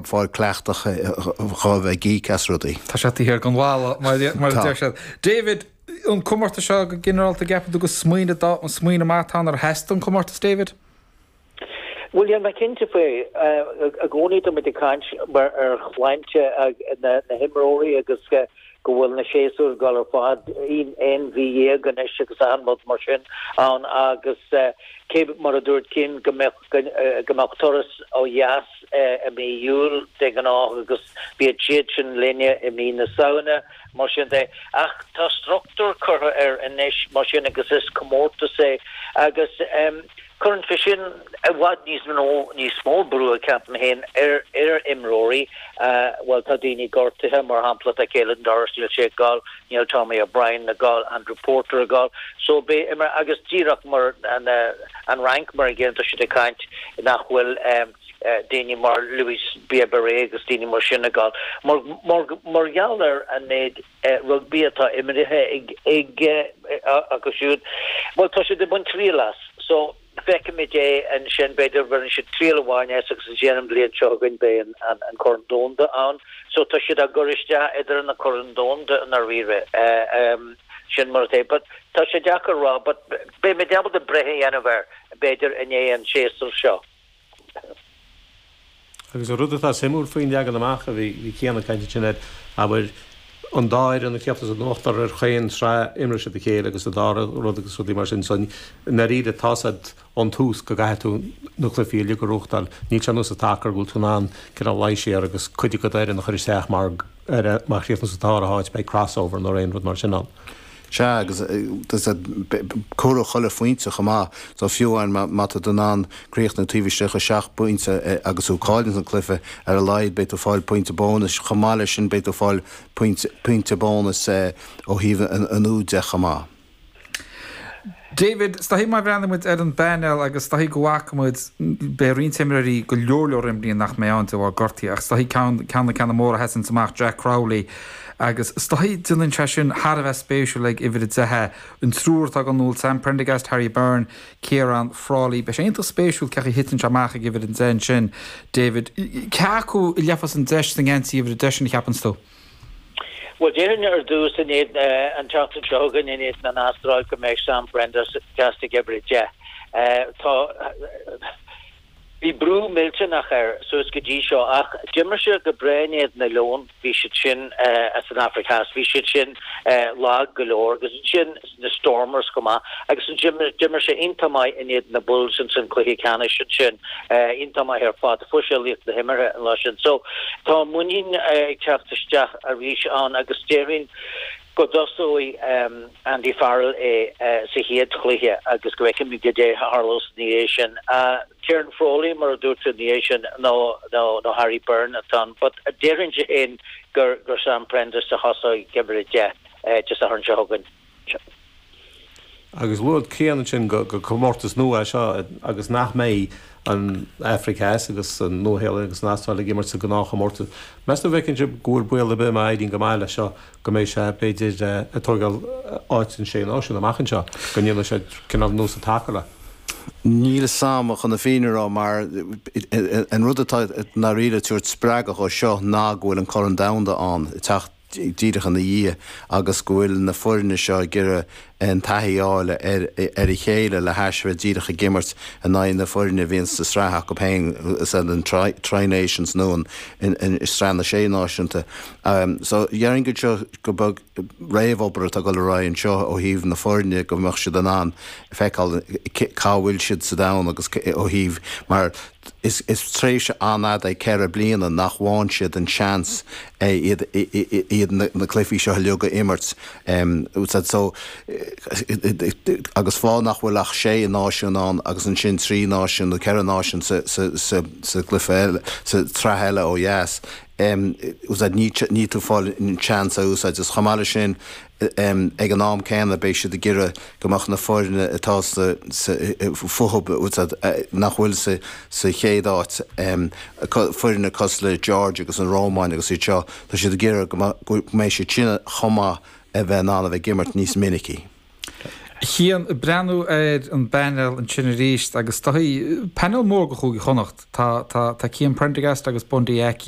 fáil cleachtach dhá bheith geek as rudaí. Tá sé tithe ar gan bhalla, mar a deir siad. David, an comórtas seo go ginearálta, an gceapann tú go smaoineamh, an smaoineamh maith atá ann, ar theastaigh an comórtas, David? Bhuel, níl mé cinnte faoi. I gcónaí tá muid ag caint ar shláinte na n-imreoirí agus go bhfuil na séasúir ag dul ar feadh, aon mhí dhéag anois agus achan rud mar sin ann agus cé mar a dúirt Cian go mbeadh go mbeadh turas ó dheas i mí Iúil de ghnáth agus bíonn siad sin linne i mí na Samhna, mar sin de. Ach tá struchtúr curtha air anois, mar sin, agus is comórtas é agus cuireann sé sin i bhfad níos mó, níos mó brú, ceapaim féin, ar imreoirí. Bhuel, tá daoine gortaithe, mar shampla, tá Caelan Doris níl sé ar Níl Tommy O'Brien ar fáil, Andrew Porter ar fáil, so be it, mar agus díreach mar an Fhrainc, mar an gcéanna, tá siad ag caint nach bhfuil daoine mar Louis Bielle-Biarrey agus daoine mar sin ar fáil. Mar gheall ar an méid rugbaí atá imeartha acu siúd, bhuel, tá siad ag baint triail as, so. Feicfimid é ansin, b'fhéidir baineann siad triail amháin as agus ansin an bhliain seo chugainn beidh an Corn Domhanda ann so tá siad á gcur isteach idir na Coirn Domhanda i ndáiríre, sin mar atá but tá sé deacair a rá but beimid ábalta breith a dhéanamh air b'fhéidir i ndiaidh an tsamhraidh seo. Agus an rud atá suimiúil faoin leagan amach a bhí Cian ag caint ansin air, abair, an dá fhoireann, an ceathrar as an ochtar ar chaon sraith, imreoidh siad a chéile agus an dara rud agus rudaí mar sin, so i ndairíre tá sé ón tús go gcaithfidh tú na cluifí uilig a bhuachtáil. Níl sé anuas sa tacar go bhfuil tú in ann cineál luí siar agus cuid acu d'fhoireann a chur isteach má chríochnaíonn tú sa dara háit, beidh crossover nó aon rud mar sin ann. Sea, agus comhairfidh chuile phointe chomh maith so, fiú amháin má tá tú in ann críochnú taobh istigh de sheacht bpointe agus thú ag cailleadh an cluiche, ar a laghad beidh tú ag fáil pointe bónais. Chomh maith leis sin beidh tú ag fáil pointe bónais ó thaobh na n-úd de chomh maith. David, Is dóichí má bhreathnaíonn muid ar an bpainéal agus is dóichí go bhfaca muid, beidh roinnt imreoirí go leor leor imreoirí nach mbeidh ann de bharr gortaí ach is dóichí ceann de na ceanna móra a sheasanns amach, Jack Crowley, agus is dóichí déanann sé sin thar a bheith spéisiúil ag uimhir a deich, an triúr atá ag iomaíocht, Sam Prendergast, Harry Byrne, Ciarán Frawley. Beidh sé iontach spéisiúil cén chaoi a dtiteann sé amach ag uimhir a deich ansin, David. Cé acu a gheobhas an deis sa ngeansaí uimhir a deich sin a cheapanns tú? Bhuel, déarfainn ar dtús, in éadan, an tseachtain seo chugainn in éadan na hAstráile, go mbeidh Sam Prendergast ag Uimhir 10. Tá. Bhí brú millteanach air suas go dtí seo, ach d'imir sé go breá in éadan na Leon. Bhí siad sin as an Afraic Theas, bhí siad sin lag go leor, agus ansin, na Stormers go maith agus ansin d'imir sé iontach maith in éadan na Bulls in san cluiche ceannais ansin iontach maith ar fad fuair sé laoch na himeartha an lá sin so tá an muinín ag teacht isteach arís ann agus déarfainn go dtosóidh Andy Farrell é sa chéad chluiche agus go bhfeicfimid goidé a tharlós ina dhiaidh sin Ciaran Frawley mar a dúirt tú ina dhiaidh sin nó nó Harry Byrne atá ann but déarfainnse féin gur gur Sam Prendergast a thosóidh ag uimhir a deich. Áit i Satharn seo chugainn. Agus rud críonna ansin go comórtas nua é seo agus nach mbeidh an Afraic Theas agus an Nua-Shéalainn agus an Astráil ag imirt sa gnáthchomórtas. Meas tú an bhfeiceann sibh go bhfuil baol ar bith má éiríonn go maith leis seo go mbeidh sé, b'fhéidir, ag tógáil áit na Sé Náisiún amach anseo, go ndéanfaidh sé cineál nós atáthar le. Níl a fhios agam chun na fírinne a rá mar an rud atá i ndáiríre ag tabhairt spreagadh dhó seo ná go bhfuil an Corn Domhanda ann ag teacht. díreach ina dhiaidh agus go bhfuil na foirne seo ag iarraidh an taithí a fháil ar a chéile le hais a bheith díreach ag imirt in aghaidh na foirne a bhíonn sa tsraith acu féin, is é an Tri Nations nó an Sraith na Sé Náisiún. So, déarfainn go b'éard é seo gur b'é an réamhobair atá ag dul ar aghaidh anseo ó thaobh na foirne go mbeadh siad in ann feiceáil cá bhfuil siad sa domhan agus ó thaobh mar Is tréimhse an-fhada é ceithre bliana nach bhfaghann siad an seans iad na cluifí seo uilig a imirt. Agus fág nach bhfuil ach sé náisiún ann agus ansin trí náisiún nó ceithre náisiún sa gcluife eile, sa tsraith eile ó dheas, níl tú ag fáil an seans a úsáid. Is chomh maith le sin, Ag an am céanna, beidh siad ag iarraidh go mbeadh na foirne atá sa fho-hub, nach bhfuil sa chéad áit, foirne cosúil le Georgia agus an Rómáin agus iad seo, tá siad ag iarraidh go mbeidh siad sin chomh maith a bheith in ann a bheith ag imirt níos minicí. Cian ag breathnú ar an bpainéal ansin arís agus tá painéal mór do Chúige Chonnacht, tá Cian Prendergast agus Bundee Aki